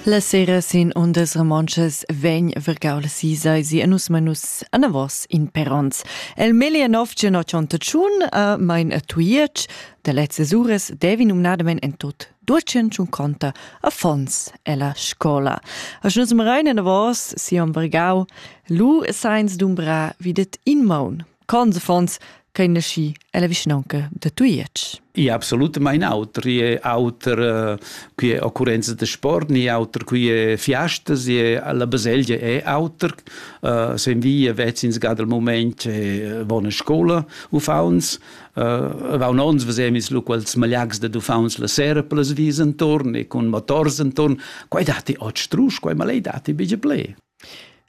La sera sin ondas romontschas vegn vergau la sisa si a nus manus anavos in per ons. El melia nov gen tschun a mein a Tuietsch, da lezzas uras devi numnadamen en tot ducen tschun conta a fons ella scola. A nus marein anavos si on vergau, lu seins dumbra videt in maun Cons affons ch'ein naschi ella vischnaunca da Tujetsch. I absolutamain auter, è auter eh, qui è occurrenza de sport, ni auter qui è fiastas, la baselgia è auter, uh, sen via vezzins ga del moment è buona scola uffauns, uh, va un ons vesemis lu quels malags de uffauns la sera per les vis intorn e con motors intorn, quai dati ot strusch, quai malei dati bige ple.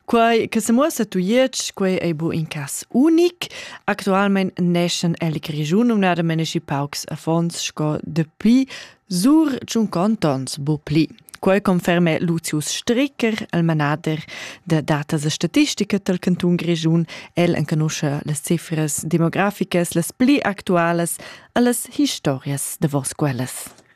Quai che semuossa tujetsch, quei ei bu in cas unic. Actualmein neschen el Grischun numnada menaschi paucs affons sco depuis sur tschun cantons bu pli. Quei conferme Lucius Stricker, el manader de datas e statistica del Canton Grischun. El enconusce le cifras demograficas, les pli actuales e les historias de vos quellas.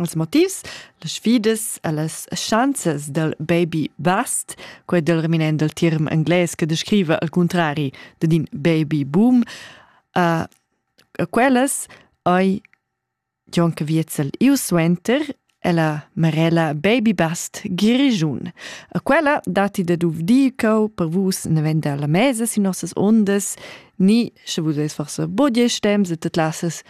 Als motivs, las sfidas e las schanzas dal baby vast, quai dal reminent dal term englais che descriva al cuntrari dad in baby boom, uh, quellas hai gion che viezel iu suenter è la marella Baby Bast Grischun. A quella datti da duvdir ch'eu per vus ne venda la mesa sin nossas ondas, ni, sche vus eis forsa budia stems e te classas